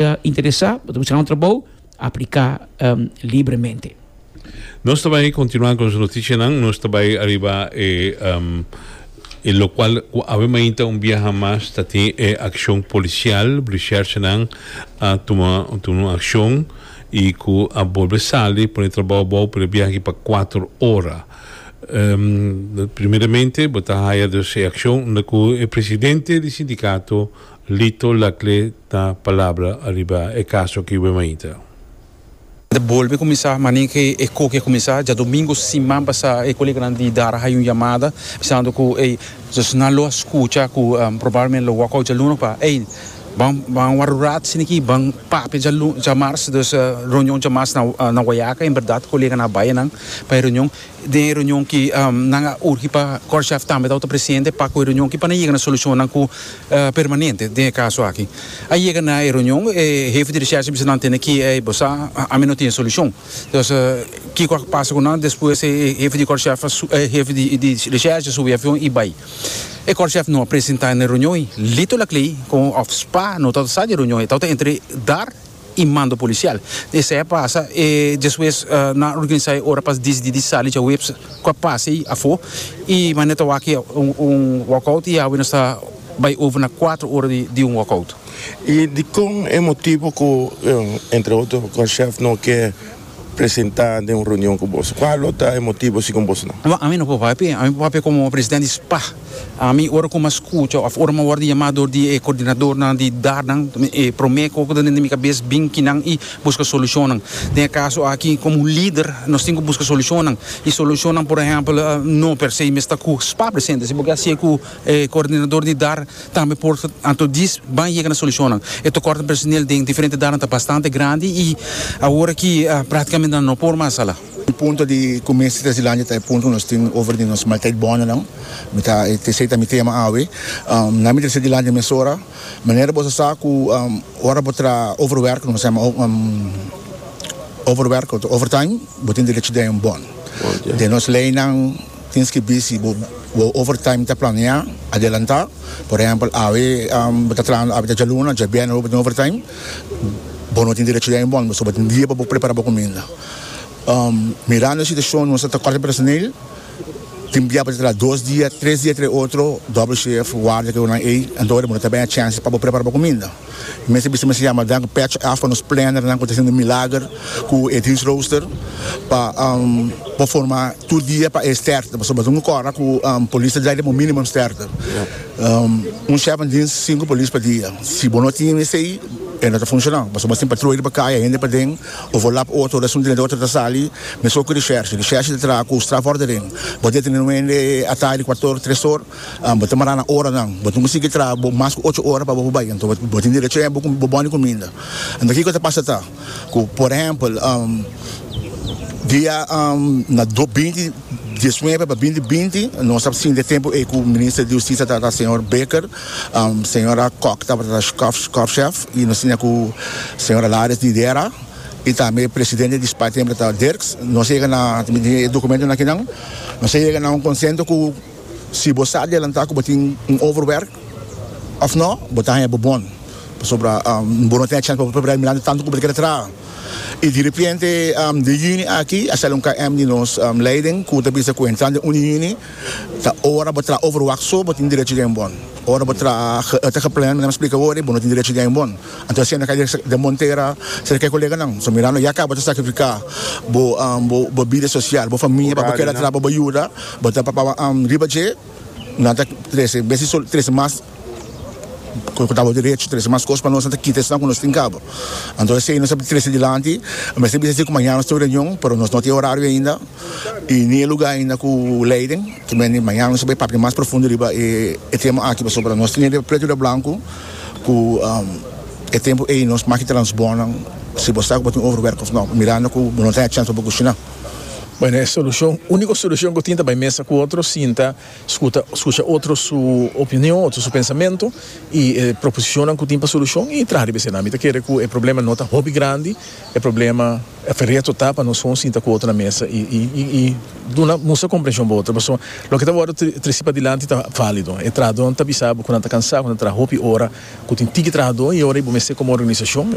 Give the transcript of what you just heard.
Ta interesá, bo ta buscá un trabou? Apliká libremente. Nos ta bai kontinuá ku nos notishanan. Nos ta bai ariba e e lokual ku awe mainta un biaha mas ta tin e akshon polisial. Blishèrshanan a tuma tuma un akshon i ku a bolbe sali pone trabou abou pa e biaha aki pa kuater ora. Primeramente bo ta haya dus e akshon unda ku e presidente di sindikato Lito Lacle ta palabra ariba e caso aki we mainta. Ta bolbe cuminsa manin ke e coki a cuminsa. Diadomingo siman pasa e Colegio Grandi di Dara hay un yamada bisando cu ey dus nan lo a scucha cu probablemente lo walk out djaluno pa ey ban ban warrurat sini aki ban papia djalu djamars dus reunion djamars na na guayaca en berdad coleganan a bayanan pa e reunion. Den e reunion ki nan a urgi pa Korshaf tambe ta ota presente pa ku e reunion ki pa nan yega na solushonnan ku permanente den e kaso aki. A yega na e reunion e hefe di reshershi a bisa nan tende ki ey bo sa ami no tin e solushon. Entonces kiko a pasa ku nan despues e hefe di korshaf e hefe di reshershi a subi e avion i bai. E korshaf no a presenta na e reunion i Lito Lakley kon òf spa no ta ota sa di e reunion e ta ota entre Dar i mando policial. Esey a pasa e despues nan a organisa e ora pa disidí di sali djaweps ku a pasa ei afó i manera ta wak un walkout i awe nos ta bai over na kuater ora di un walkout. I dikon e motibu ku entre otro Conchef no ke presenta den un reunion ku boso? Kua lo ta e motibu si kon boso no? No, ami no por papia. Ami por papia komo presidente di spa. Ami ora ku mi a skucha òf ora mi a wòrdu yamá dor di e kordinadornan di dar nan e promé kos ku ta dentro di mi kabes bin kinan i buska solushonnan. Den e kaso aki komo un lider nos tin ku buska solushonnan i solushonnan por ehèmpel no per se mester ku spa presente si bo ke hasié ku E coordinador di dar tambe por anto dis ban yega na solucionnan. E tocort di personel den diferente darnan ta bastante grandi y awor aki practicamente nan no por mas hala. E punto di cu mester ta dilanti ta e punto cu nos tin over di nos maltijd bondennan. Mi ta esey ta mi tema awe. Nan mi ta esey dilanti mesora. Manera boso sa cu ora bo tra overwerk cu nos ta yama overwerk of overtime bo tin derecho den bon den nos leynan. Tin skibí si bo overtime ta planeá adelantá. Por ehèmpel, awe bo ta trahando awe ta djaluna, djabièrnè bo bo tin overtime, bo no tin derecho di aimbòn bo, so bo tin dia pa bo prepará bo kuminda. Mirando e situashon nos ta tekòrta personel, tin bia bo ta traha dos dia, tres dia entre otro, dòbel shèf, warda, ke onan ei, anto ora bo no ta bèn a chèns pa bo prepará bo kuminda. Mi mester bisa mester yama dan patch af pa nos plannernan ku ta haciendo milager ku e diensrooster pa por forma tur dia pa e sterkte pasobra ta un kora ku polis ta drai den bo minimum sterkte un chef den dienst sinku polis pa dia si bo no tin esei e no ta funciona pasobra tin patroi riba kaya hende paden of bo lap otro resun den otro ta sali mesun oco di shershi di shershi ta traha ku strafordering bo debe tene un hende ata di cuator tres or Bo ta mara na oranan. Bo tin cu sigui traha bo mas cu ocho ora pa bo por bay. Anto bo tin derecho yen bo bon di cuminda. Anto kico ta pasa ta cu, por ehempel, dia na binti diesnuebe pa binti binti nos a sinti e tempo ey cu Minister di Husticia tabata Señor Baker, Señora Kok tabata Korfschef y nos tinha cu Señora Lares di Dera y tambe e Presidente di Spy Temple ta Dirks. Nos a yega na, mi tin e documentonan akinan, nos a yega na un consento cu. Si bo sa adelantá ku bo tin un overwerk òf nò, bo ta haña bo bon, pasobra bo no tin e chèns pa bo prepará mirando tantu ku bo ta kere traha. I di repente den yüni aki a sali un KM di nos leiding ku ta bisa ku entrando den un di yüni ta ora bo traha overwak so bo tin derecho di haña bon. Ora bo traha ta geplean manera mi a splika awor ei bo no tin derecho di haña bon. Anto asina no kai den montera serka e koleganan. So mirando ya ka bo ta sakrifiká bo bida sosial, bo famia pa bo kere traha pa bo yuda. Bo ta papa riba dje, nan ta trese bes di trese mas ku tabata derecho, trese mas kos pa nos, nan ta kita esnan ku nos tin kaba. Anto esei nos a trese dilanti. A mester bisa esei ku mañana nos tin un reunion, pero nos no tin e horario ainda i ni e lugá ainda ku Leiden. Ta mester di mañana nos a bai papia mas profundo riba e tema aki pasobra ta nos tin e pretu riba blanku ku e tempu ei nos maki transbornan si bo sa ku bo tin overwerk òf nò, mirando ku bo no ta haya chèns pa bo kushiná. Bueno, e solucion, unico solucion cu tin ta bay mesa cu otro, sinta, scuta, scucha otro su opinion, otro su pensamento y e proposicionnan cu tin pa solucion y traha riba esena. Mi ta kere cu e problema no ta hopi grandi, e problema, e fereto ta pa nos pon sinta cu otro na mesa y, y, y, y duna, mustra comprension pa otro pasobra loke ta wordo tri, trisi padilanti ta valido. E trahadornan ta bisa bo cu nan ta cansa, cu nan ta traha hopi ora cu tin tiki trahador y ora y bo mester como organisacion,